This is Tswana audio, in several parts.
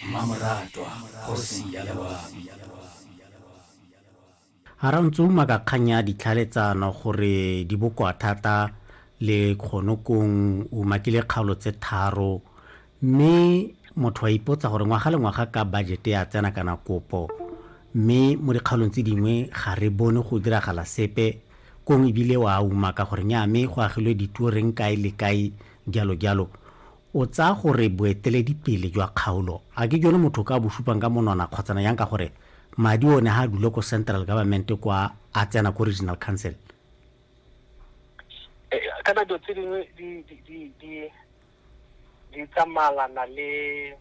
mmamoratwa kgosi ya lewabi. A re o ntse o uma ka kgang ya ditlhaeletsano gore di bokoa thata le kgonokong o umakile kgaolo tse tharo mme motho a ipotsa gore ngwaga le ngwaga ka budget ya tsena kana kopo mme mo dikgaolong tse dingwe ga re bone go diragala sepe kong ebile wa uma ka gore nya mme go agilwe dituo reng kae le kae jalo jalo O tsaya gore boeteledipele jwa kgaolo a ke jone motho o ka bo supang ka monwana kgotsana jang ka gore madi o ne ga a dule ko central government kwa a tsena ko regional council? Kana dilo tse dingwe di tsamalana le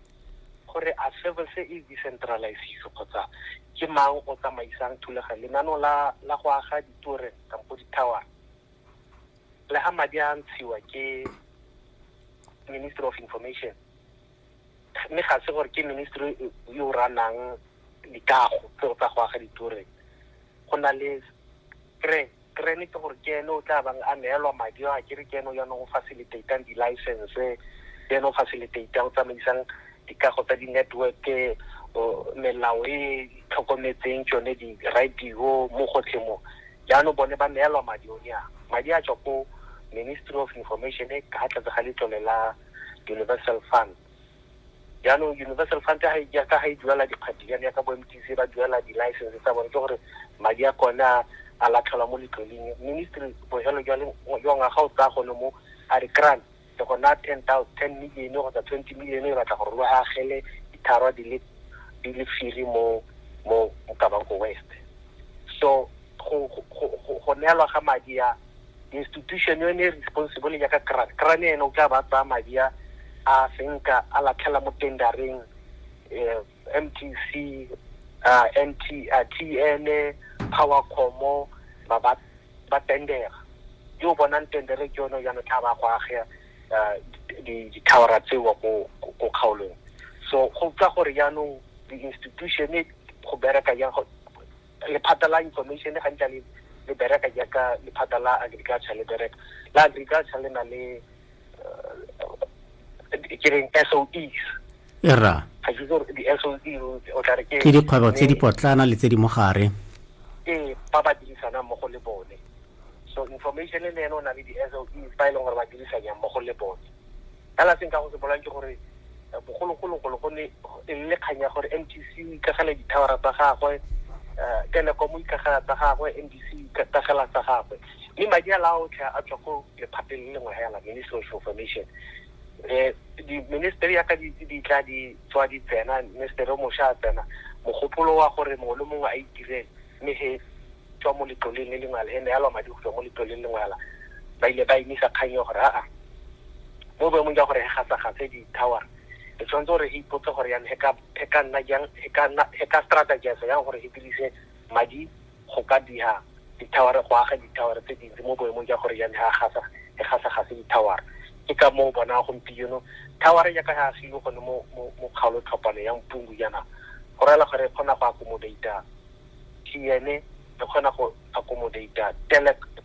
gore a service e decentralized kgotsa ke mang o tsamaisang thulaganyo lenaneo la go aga ditore kampo di-tower. le ga madi a ntshiwa ke ministry of information mme ga se gore ke ministry yo o ranang dikago tseo tsa go aga ditoreng go na le kre krene ke gore ke ene o tla bang a neelwa madi a kere ke ene o yanong o facilitatang di-license le ene o facilitatang o tsamaisang dikago tsa di-network melao e tlhokometseng tsone di-radio mo gotlhe mo jaanong bone ba neelwa madi o ne a madi a tswa ko ministry of information e ka tlatse ga letlole la universal fund jaanong universal fund ka ga e duela dikgwedi jane ya ka bo mtc ba duela di-license tsa bone ke gore madi a kone a a latlhelwa mo letloleng ministry bojalo jwa ngwaga o tsaya gone mo a re grant le go naya ten thousand ten million kgotsa twenty million e batla gore lo agele ditharwa di le di le firi mo mo Mokabanko West so go go go go neelwa ga madi a institution yone e responsible ya ka kran kran ene o tla ba tsaya madi a a senka a latlhela mo tendareng eh mtc uh, nt uh, tn powercomo ba ba ba tendera yo o bonang tendere ke yone jaanong tla ba go agea uh, dithawara tseo ko kgaolong so go utlwa gore jaanong di-institution go bereka jang lephata la information gantla le bereka jaaka lephata la agriculture le bereka la agriculture le na le ke reng SOEs era ga ke gore di SOE o tla re ke ke dikgwebo tse di potlana le tse di mogare ee ba ba dirisanang mo go le bone so information e le ene o na le di SOEs ba e leng gore ba dirisanyang mo go le bone ka la seng ka go se bolang ke gore eh, bogologologolo go ne e le kgang ya gore mtc o ikagela dithawara tsa gagwe um telecom o ikagela tsa gagwe mbc o ikagela tsa gagwe mme madi a la otlhe a tswa ko lephateng le lengwe hela ministry of information um di-ministry yaka di tla di tswa di tsena ministry o mošwa a tsena mogopolo wa gore mongwe le mongwe a itirele mme he tswa mo letloleng le lengwe ala e ne yalwa madi go tswa mo letloleng le lengwe ala ba ile ba emisa kgang ya gore aa mo boemong jwa gore ga sa gatse di-tower e tshwanetse gore e ipotse gore yang e ka nna jang e ka strategize yang gore e dirise madi go ka diha dithawara go aga dithawara tse dintsi mo boemong jwa gore yane ga gasa e gasa gase dithawara ke ka moo bona gompieno thawara jaaka ga agilwe gone mo mo kgaolo tlhopano ya mpungu jaana go rela gore e kgona go accommodata tn e kgona go accommodata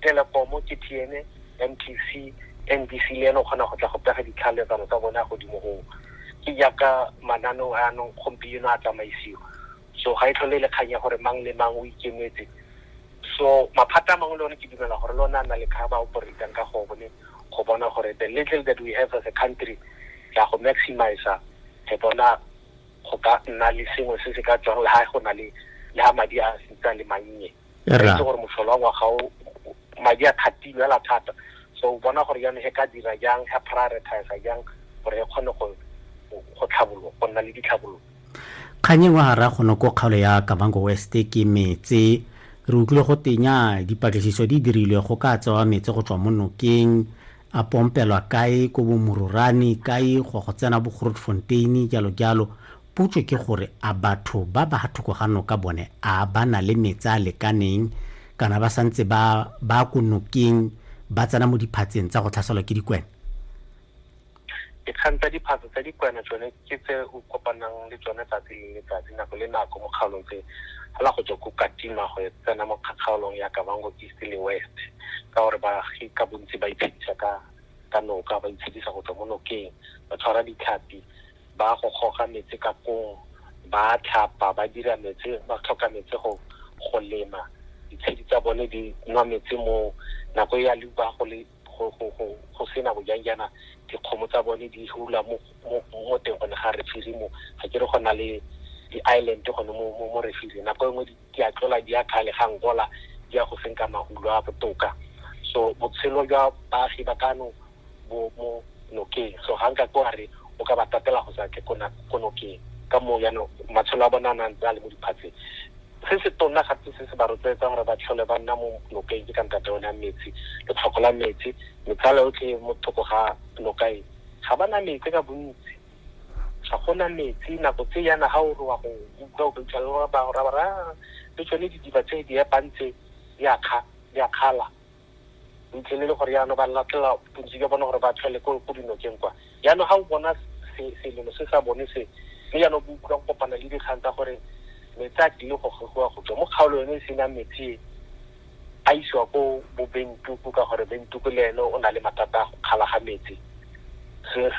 telekomo ke tn mtc nbc le ene o kgona go tla go pega ditlhaletsano tsa bone ya godimo goo ke jaaka mananeo a anong gompieno a tsamaisiwa so ga e tlhole e le kgang ya gore mang le mang o ikemetse so maphata a mangwe le one ke dumela gore le one a na le kgaba operatang ka go bone go bona gore the little that we have as a country ya go maximize re bona go ka nna le sengwe se se ka tswang le ha go na le le ha madi a sitsa le mannye itse gore motlholo wa ngwaga o madi a kgatilwe a la thata so o bona gore jaanong he ka dira jang he prioritize jang gore e kgone go go tlhabologo go nna le ditlhabololo kgang engwe ga ra gone ko kgaolo ya kavango west ke metse re utlwile go tenya dipatlisiso di dirilwe go ka tsewa metse go tswa mo nokeng a pompelwa kae ko bomororane kae go go tsena bo grotfontein jalo jalo potso ke gore a batho ba ba thoko ga noka bone a ba na le metse a lekaneng kana ba santse ba ba ko nokeng ba tsena mo diphatseng tsa go tlhaselwa ke dikwena Dikgang tsa diphatsa tsa dikwena tsone ke tse o kopanang le tsone tsatsi le letsatsi, nako le nako mo kgaolong tse, fela go tswa ko Katima go tsena mo kgaolong ya Kavango East le West, ka gore baagi ka bontsi ba itshedisa ka ka noka, ba itshedisa go tswa mo nokeng, ba tshwara ditlhapi, ba go goga metsi ka kong, ba tlhapa, ba dira metsi, ba tlhoka metsi go go lema, ditshedi tsa bone di nwa metsi moo, nako e ya leuba go le go go go go sena go jang jaana dikgomo tsa bone di hula mo mo teng gone ga refiri mo ga ke re go na le di-island gone mo mo mo refiri nako e nngwe di a tlola di a khale ga ngola di ya go senka mahulo a botoka so botshelo jwa baagi ba kano bo mo nokeng so ga nka ko re o ka ba tatela go sa tle ko nokeng ka moo jaanong matshelo a bona a nang tsa le mo diphatseng Se se tona gape se se ba rotloetsang gore ba tlhole ba nna mo nokeng ke ka ntate one ya metsi, letlhoko la metsi. Metsala yotlhe mo thoko ga noka e, ga ba na metsi ka bontsi. Ga go na metsi nako tse yana ga o re wa go utlwa o fitlhela ba go raya gore le tsone didiba tse di epang tse di a kga, di a kgala. ntle le gore yaanong ba nna tla bontsi jwa bone gore ba tlhele ko dinokeng kwa yaanong ga o bona selelo se sa bone se mme yaanong bo utlwa go kopana le dikgang tsa gore metsi a tlile go gogiwa go tswa mo kgaolo yone e senang metsi a isiwa ko bo bentuku ka gore bentuku le ene o na le mathata a go kgala ga metsi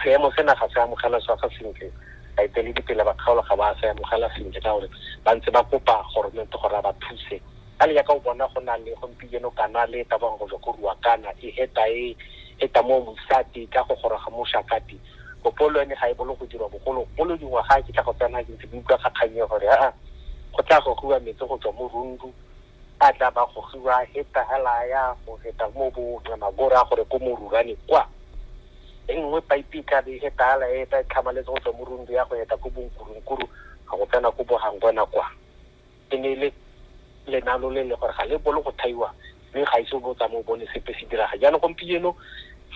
seemo se naga se amogela sa ga sentle baeteledipele ba kgaolo ga ba se amogela sentle ka gore ba ntse ba kopa goromente gore a ba thuse ka le yaka o bona go na le gompieno kana le eta bang go jwa go rua kana e eta e eta mo mosati ka go goroga mo shakati bopolo ene ga e bolo go dirwa bogolo bolo dingwa ga ke tla go tsena ke ntse ke utlwa kgakganye gore a go tla go rua metsi go tswa mo rundu a tla ba go rua eta hela ya go eta mo bo tla magora gore ko mo rurane kwa e nngwe pipe e tla be e tala e tla tlhamaletse go tswa mo rundu ya go eta ko bonkurunkuru ga go tsena ko bohangwana kwa e ne e le lenalo le le gore ga le bolo go thaiwa mme ga ise o bo tsamaye o bone sepe se diraga jaanong gompieno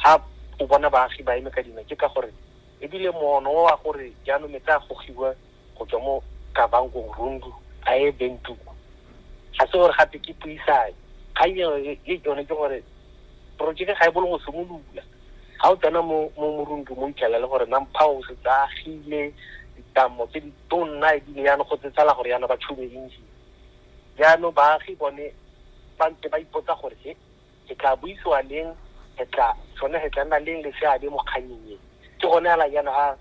ga o bona baagi ba eme ka dina ke ka gore ebile mono wa gore jaanong metse a gogiwa go tswa mo kabangong rundu a e bentuku ga se gore gape ke puisane kgang eo e yone ke gore porojeke ga e bolo go simolola ga o tsena mo morundu mo itlhela le gore nampha o setse agile ditamo tse di to nna e bile jaanong go tsetsala gore jaanong ba tšhume engine. Jaanong baagi bone ba ntse ba ipotsa gore he, ke tla buisiwa leng, ke tla sone he tla nna leng le seabe mo kgannyeng e. Ke gone ala jaanong a